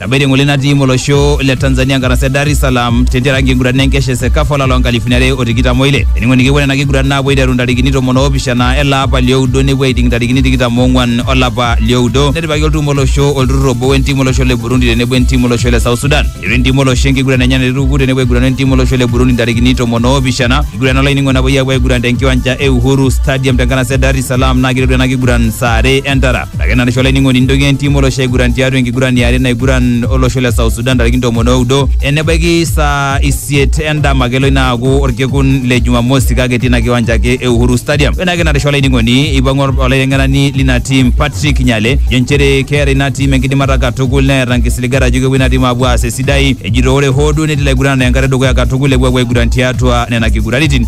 Tabiri ng'ole natii molosho le Tanzania nkarasa e Dar es Salaam tentiaraki enkiguran enkesha e Sekafa olapa loonkalifuni are o tikitam oile. Eningo nikipuo nena kiguran naapuo aiteru ntarikini tomon oopishana ele apa lioudo nepuo aiting ntarikini tikitam oong'wan olapa lioudo. Netipikaki oltum olosho olturrur obo wentim olosho le Burundi tenebo entim olosho le South Sudan. Eiteru entim olosho enkiguran enye naituku tenebo aiguranu entim olosho le Burundi ntarikini tomon oopishana. Enkiguran olainingo napuoi aapuo aiguran tenkiwanja e Uhuru Stadium tenkanasa e Dar es Salaam naa keiteru ena kiguran saa are entara. Ake narisho olainining'oni nintoki entim olosho aiguran tiatua enkiguran yare naiguran olosho le South Sudan ntarikini tomon oudo enebaiki saa isiet endama kelo ina aaku orkekun le Jumamosi kake etii ina kiwanja ake e Uhuru Stadium. Ore ake narisho olainining'oni eipang'u olaiteng'enani lina tim Patrick Nyale jo nchere keeta ina tim enkidimata katukul neeta nkisiligat ajo kepuo ina tim aapuo aas esidai ejito ore hoo duo netii ilaiguranani enkata edukuya katukul epuo aapuo aiguran tiatua nena kiguraritin.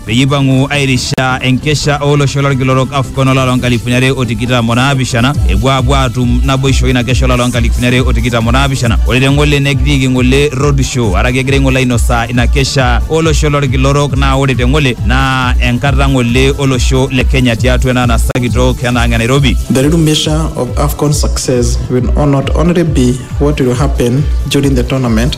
peyie eipang'u airisha enkesha olosho lolkila orok AFCON olari loo nkalifuni are o tikitam o naapishana epuo aapuo aatum naboisho ina kesha olari loo nkalifuni are o tikitam o naapishana ore te ng'ole negirieki ng'ole road show araki egira ng'ole ainosaa ina kesha olosho lolkila orok naa ore te ng'ole naa enkata ng'ole olosho le Kenya tiatua ena anasa kitok ena ang' e Nairobi The real measure of AFCON success will not only be what will happen during the tournament,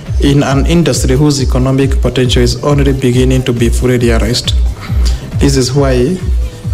In an industry whose economic potential is only beginning to be fully realized, this is why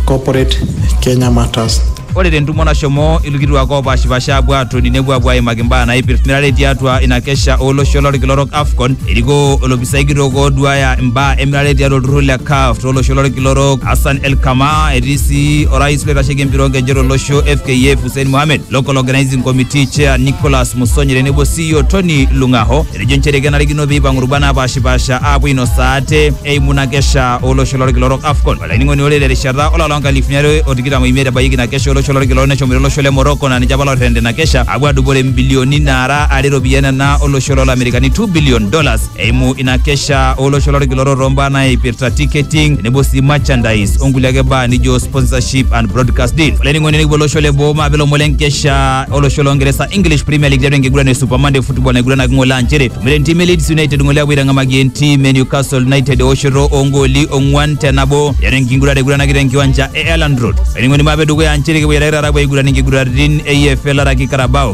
corporate Kenya matters. ore tentumo nashomo ilkituak oopaashipaasha apuo aatoni nepuo apuo aimaki mbaa naipirtirare tiatua ina kesha olosho lolkila orok afcon erikoo olopisai kitok ooduaya imbaa emirare tiatua olturrur le caf tolosho lolkila orok hassan elkama etii sii orais loitasheki empira oonkejek tolosho fkf Hussein Mohamed, Local Organizing Committee Chair Nicholas Musonyi tenebo CEO Tony Lungaho etejo nchere kenarikino pee eipang'u rubat naapaashipaasha aapuo ainosaa ate eimu ina kesha olosho lorkila orok AFCON. Olainining'oni ore terishata olapa loo nkalifuni are o tikitam oimiet ebayieki ina kesha olosho lorkila orok neshomoita olosho le Morocco naa ninche apa looterrena ina kesha aapuo aadupore mbilioni naara are iropiyiani nena olosho loo Lamerikani 2 billion dollars eimu ina kesha olosho lorkilorok tombaa naipirta ticketing tenebo sii merchandise onkulie ake baa nijo sponsorship and broadcast deal olainining'oni nikipuo olosho le boo maape lomon lenkesha olosho longeresa english premier league tiatua enkiguran e super monday football naiguranaki ng'ole aa nchere tumore entim e leeds united ng'ole apuo aitang'amaki entim e newcastle united eoshoto oongooli ong'uan te nabo tiatua enkiguran naiguranaki tenkiwanja e elland road olainining'oni maape dukuya aa nchere kipuo aitake taata apuo aiguran inkiguraritin e EFL araki carabao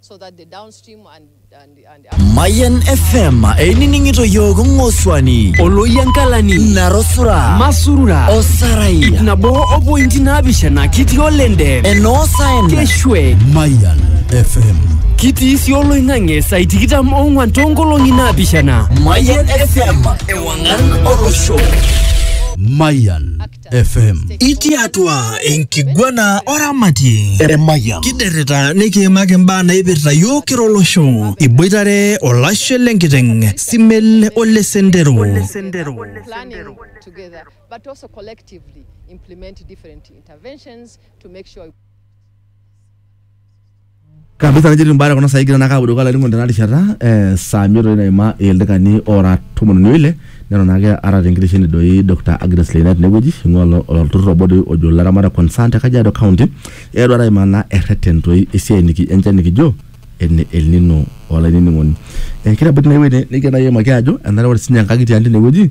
so that the downstream and, and, and the Mayan FM einining'ito yiook ng'osuani oloyiankalani narosura masurura osarai ip nabo opointi naapishana kitii olende enoosaen keshwe Mayan FM. kitii sii oloing'ang'e saai tikitam ong'wan toonkolong'i naapishana Mayan FM ewang'an olosho Mayan FM. Itii atua enkiguana oramatie Emayian. kiderrita nikiimaki imbaa naipirta yiok kira olosho iboitare olashe lenkiteng simel ole sendero planning together, but also collectively implement different interventions to make sure Kabisa nejoito imbaa kuna saai egira naake apuo dukuya olainining'oni tena rishata ee saa miet doi naima ildakikani oora tomon o ile neton naake aata te nkitesheni doi Doctor Agnes Leina tene wueji ing'ua ilo olturur obo doi ojo ilaramatak concern te Kajiado County, eetuo taa aimaa naa erreten toi esiai niki enche nekijo ene el nino olainining'oni. Ee kigira abaki ine wuei nekigira nai aimaki aajo enare ore siinye enkang' tiang' tine wueji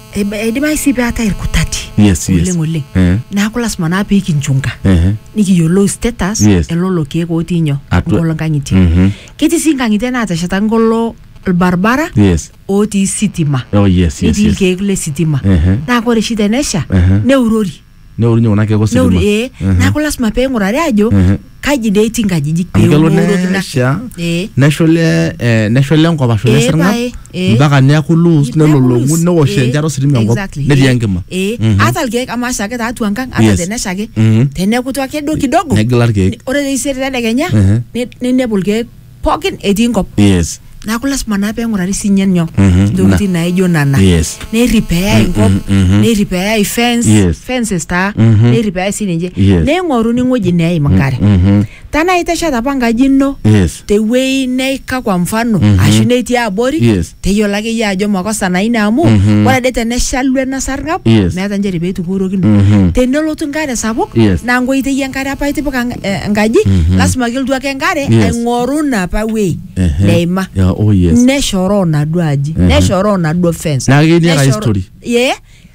Eba- eidimayu sii peetae irkutati Yes, yes. oleng oleng Eh. neeku lasima naa pee kinchunga Ehe. nikiyiolou status Yes. elolo keek otii nyoo Atua. ngolo nkang'itie Mhm. ketii sii nkang'itie naateshetaki ngolo ilbaribara Yes. otii sitima Oh, yes, yes, netii yes. irkeek le sitima Ehe. naa ore oshi tenesha Ehe. neurori neorunye kuna keek neuri ositima ee Mhm. neeku lasima pee ing'urari aajo Mhm. kaji dee etii nkajijik pee amu kelo eung'uroki ina- nesha ee neshole eh, neshole enkop ashu Ee, nesarng'ab pae, ee. mpaka neaku loose nelolong'u Neaku newosh loose, enchata ee, ositima enkop exactly, netii ee, enkima ee. Mhm. ata irkeek amu asha ake taatua enkang ata Yes. tenesha ake Mhm. tenekutu ake duo kidogo negila irkeek ore taisere tedekenya Mhm. ni- ninepu irkeek pookin etii nkop yes neaku lasima naa peng'urari sinye nyoo Mhm, ntokitin naijo nana yes nerripeai nkop mhm. nerripeai fence Yes. fences taa Mhm. nerripeai sininche Yes. neing'oruni ng'ueji neim nkare Mhm, tanaa itesheta apa nkaji ino yes tewuei neika kwa mfano Mhm. ashu netii abori yes teyiolo ake iyie ajo makosa naa ina amu Mhm. ore ade teneshalu ena sarng'ab Yes. meeta nchere pee eitukuorokino Mhm. tenelotu enkare sapuk Yes. naa nkoitei enkare apa itipika enk- eh, enkaji Mhm. lasima ake elotu ake enkare Yes. aing'oru ina apa wei Ehe. neima Yeah, oh yes. neshoroo naduo aji Mhm. neshoroo naduo fence Naa ketii ake neshoroo- history. Ye,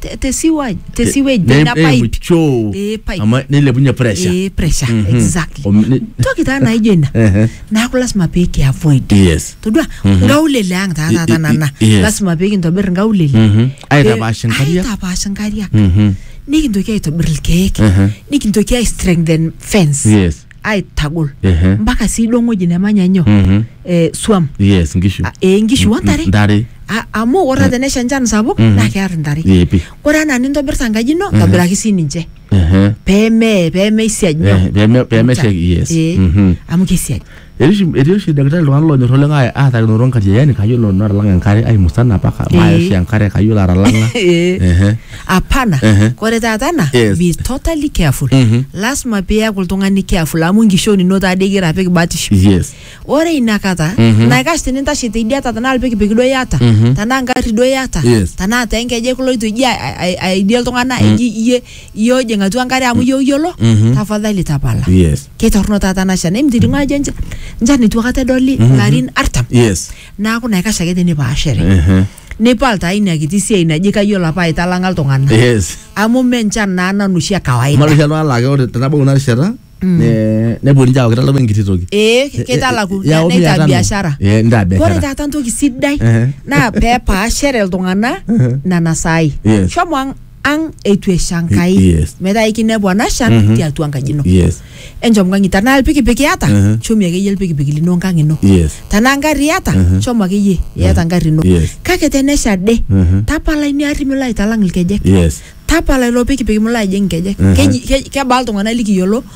te- te sewage te sewage ne na pipe cho Eh, pipe. ama ne le bunya pressure eh pressure Mhm. exactly Om- ne- toki taa naijo ina Ehe. naaku lasima pee kiavoid yes todua Mhm. nkaulele ang taa I- taata i- nana i- yes. lasima pee kintobir nkaulele Mhm. Aitapaash inkariak. aitapaash nkariak Mhm. nikintoki aitobir ilkeek Ehe. nikintoki ai strengthen fence yes aitagol Ehe. mpaka sii duo ng'oji nemanya nyoo Mhm. eh, swam yes nkishu Ah, eh, nkishu ontare ntare Ah, amu ore tenesha enchan sapuk Mhm. naa kear ntare yepi ore anaa nintobirta enkaji ino ntobiraki sii ninche Ehe. peme pemeisiaj nyoo Eh, peme- pemesheki yes Eh, Mhm. amu keisiaj Etii oshi- etii oshi daktari iltung'anak lonyor oleng aa- aatakinoto nkariayani kayiolo nanu atalang'a enkare aimusana paka Eh. maaya oshi enkare kayiolo atalang'a Eh. Ehe. Hapana. Ehe. Kore taata ena, Yes. be totally careful. Mhm. Lasima piaku oltung'ani careful amu nkishon ino taade igira apik batisho. Yes. Ore inakata, Mhm. naikash tinintashe teidiata tenaa ilpikipiki duo iyata, Mhm. tenaa ngarri duo iyata, Yes. tenaa tee nkejek iloito iji a- a- aidie iltung'ana eji iyie iyie ojing atua enkare amu iyie oyiolo, Mhm. tafadhali tapala. Yes. Keitorrono taata ena shan. Emitiki ng'oa ajo encha- nchan eitu akata edoli larin artam. Yes. Neaku naikash ake tinipaashare. Ehe. nipal taa ina kiti siai naji kayiolo apa aitalang'a iltung'anak yes amu me enchan naa nanu oshi e kawaida malu oshi iltung'anak laa ke- ore tenabau ina rishata ne- nepuo ninche aaku kitalaku enkiti toki ee kitalaku Ya, omi neitaa atano. biashara Eh, nitaa biashara. ore taata entoki sidai Ehe. naa peepaashere iltung'anak nena saai Yes. shomo ang ang eitu esha Enkai Yes. metaa ikinepu ena shan Mhm. tiatua enkaji ino yes enchom nkang'i tanaa ilpikipik iyata Mhm. chomie akeyie ilpikipik lino nkang ino yes tanaa ngarri iyata Mhm. chomo akeyie iyata ngarri ino yes kake tenesha ade Mhm. tapala ina arri milo aitalang ilkejek yes tapala ilo pikipik milo ajing nkejek Mhm. Keji- ke- kebaa iltung'anak likiyiolo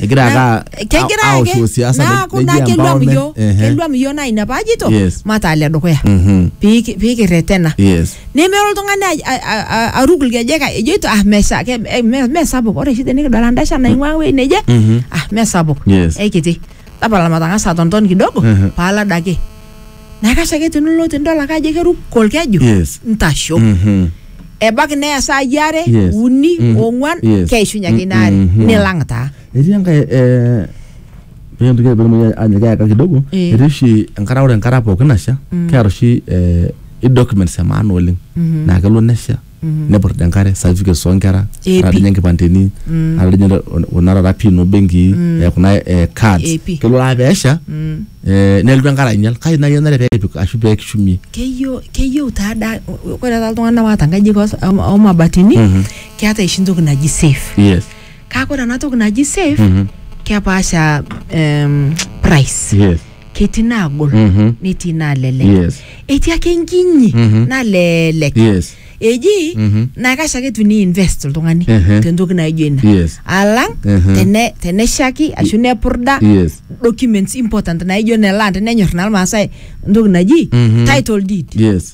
egira Na- ake kegira ake- aoshoo siasa naaku neji naa keluam empowerment. iyioo Ehe. keluam iyioo naa ina paajito Yes. mataa le dukuya Mhm. Piiki- piikirretena Yes. nemelo oltung'ani aj- a- a- a- aruk ilkejek ejoito ah mesha ke- eh, me- mesapuk ore oshi tenikidol endasha naing'ua ewuei neje Mhm. ah mesapuk Yes. eikiti tapala matang'asa atonton kidogo Mhm. paalada ake naa kasha ake tinilo tidol ake ajo keruko olkeju Yes. ntasho Mhm. ebaiki neya saai are Yes. uni Mhm. ong'uan Yes. keishunye ake ina are Mhm. nilang taa etii enkae eh, pee entoki pee kitumoki ajo keeka kidogo Eh. etii oshi enkata ore enkata pookin nasha keeta oshi eh, i documents e maana oleng naa kelo nesha neput enkare certificates oonkera Eh, ata pi. ninye nkipandeni ata ninye ol- kuna taata pin obenkii eh, kuna eh, cards Eh, pi. kelo aa peesha eh, nelotu enkare ainyal kake nai enare peepik ashu peekishumie keyieu keyieu taa da ore taata iltung'anak waata nkajijik os- o- omabatini Mhm. keeta oshi entoki naji safe yes kake ore ena toki naji safe kepaasha em, price yes ketii naagol Mhm. netii naalelek Yes. etii ake enkinyi Mhm. nalelek Yes. eji Mhm. naa kash ake tuni invest oltung'ani Ehe. tentoki naijo ina Yes. alang Ehe. tene- teneshaki ashu nepurda Yes. documents important naijo ne land nenyor naa irmaasai entoki naji Mhm. title deed Yes.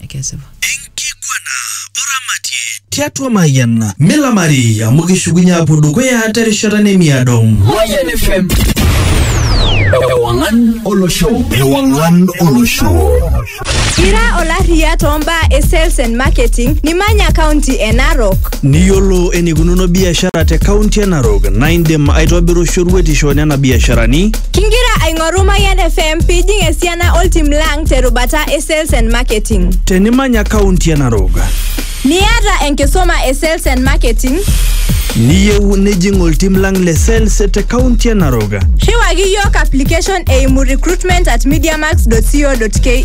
ekesipa. Enkiguana o ramatie tiatua Mayian. Milamari amu kishukunye apuo dukuya terishata nemiado. Mayian FM. Ewangan olosho. Ewangan olosho. Ira olarriya too mbaa e sales and marketing nimanya kaunti e Narok. Niyiolo enikununo biashara te kaunti e Narok naa indim aitobiru shoruetisho nena biasharani. Kingira aing'oru Mayian FM pijing esiana oltim lang terubata e sales and marketing. Tenimanya kaunti e Narok, Niata enkisuma e sales and marketing, niyieu nijing oltim lang le sales te kaunti e Narok. riwaki yiok application eimu recruitment at mediamax.co.ke.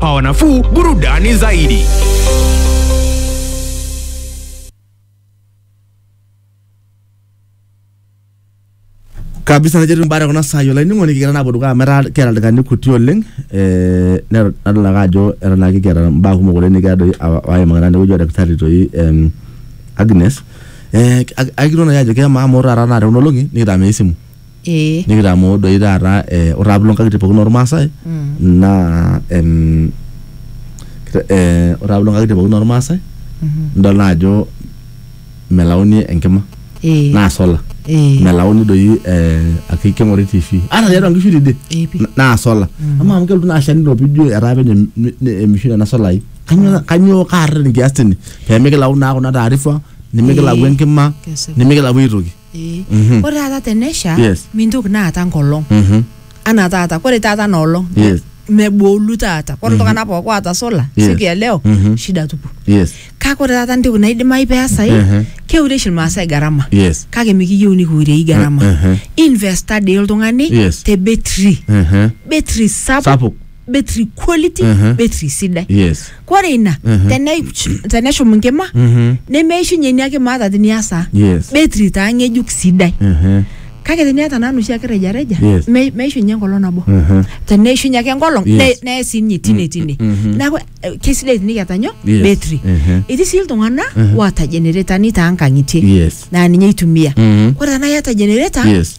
pawa nafuu, burudani zaidi. kabisa najo etiu mbaa kuna saai olainining'oni kigira naapuo dukuya amu etaa kiata ildaikani kuti oleng eh, nero- nadol ake ajo eton ake kiata mbaa kumok oleng nikigira doi awa- aimaki naa tenewueji oldakitari toi em, Agnes eh, ak- akilo nai ajo kemaa amu ore taata naa tekuna olong'i nikitamei esimu Ee. nikitamoo doi taata eh, ore taata piilo nkang'itie pookin ormaasai naa em, kita- eh, ore taata piilo nkang'itie pookin ormaasai nidol naa ajo melauni enkima Ee. naa sola Ee. melauni doi eh, ake keng'ori tv ata tiatua nkishu tidie Ee pi. na- naa sola amaa amu kelotu naa asha nilo pijo etaa penyo em- ne- ne- emishu nena solai Kanyoo- kanyoo kaarreten kias tine pemikilau naa kuna taarifa nimikilau Ee. enkima Kesipa. nimikilau aitoki Eh, Mhm. ore taata tenesha Yes. mintoki naa aata nkolong Mhm. anaa taata kore taata na olong Yes. mebolu taata kore iltung'anak pooki oata sola Yes. siku ya leo Mhm. shida tupu Yes. kake ore taata ntoki naidimayu peesai Mhm. keure oshi ilmaasai gharama Yes. kake mikiyieu nikiurei gharama Mhm. investa dei oltung'ani Yes. te betri Mhm. betri sapuk Sapuk. betri quality Mhm. betri sidai yes kore ina Mhm. tene- teneshum nkima Mhm. nemeishunye inia kima ata tiniasaa yes betri taa ng'ejuk sidai Mhm. kake teniata naa noshi ake rejareja Yes. me- meishunye enkolong nabo Mhm. teneishunye ake enkolong Yes. ne- neye sii ninye tine tine mhm. neaku eh, kesidai tinikiata nyoo Yes. betri Mhm. etii sii iltung'ana Mhm. waata generetani taankang'itie yes naa ninye eitumia Mhm. kore tanaa iata genereta Yes.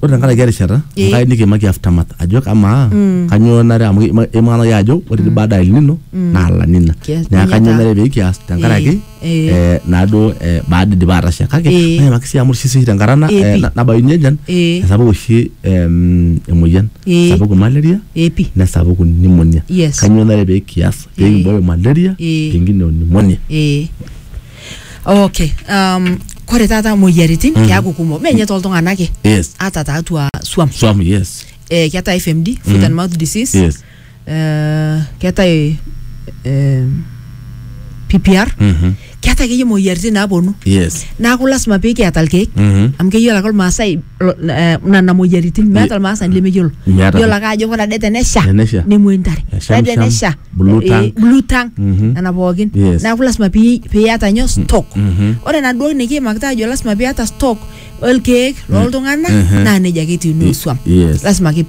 ore tenkaraki erishata Eh. enkai nikimaki aftermath ajo amaa kanyoo nare amu ima- imaana ake ajo ore ti baada ya El Nino naa La Nina Kias- neeku ninye kanyoo taa. nare pekias tenkaraki Eh, eh. eh, naaduo eh, baada idipa atasha kake Eh. maimaki sii amu ore oshi tenkarana Eh, eh, pi. na- nabayuni ejan Eh. esapuk oshi em, emoyian Eh. sapuku malaria epi nesapuku pneumonia Yes. kanyoo nare pekias Eh. pekimbooyo malaria Eh. pengine o pneumonia ee okay um, kore taata moyiaritin mm. keaku kumok menye toltung'ana ake Yes. ata taatua swam Swam, yes. eh, keetae fmd foot Mm. and mouth disease Yes. eh, keetae eh, ppr Mhm. keetae akeyie moyiaritin naaponu Yes. naaku lasima pikiata ilkeek Mhm. amu keyiolo ake olmaasai lo- eh, nana moyiaritin meeta olmaasani lemeyiolo Meeta. yiolo ake ajo ore ade tenesha Tenesha. nemoi ntare Esham, ore ade sham. tenesha Blue eh, tank. blue tank Mhm. nena pookin Yes. neeku lasima pi- piata nyoo stock mhm. ore enaduo nikiimakita ajo lasima piata stock olkeek loltung'anak Mhm. naa nejia ake etiu nuo swam Yes. lasima ake pii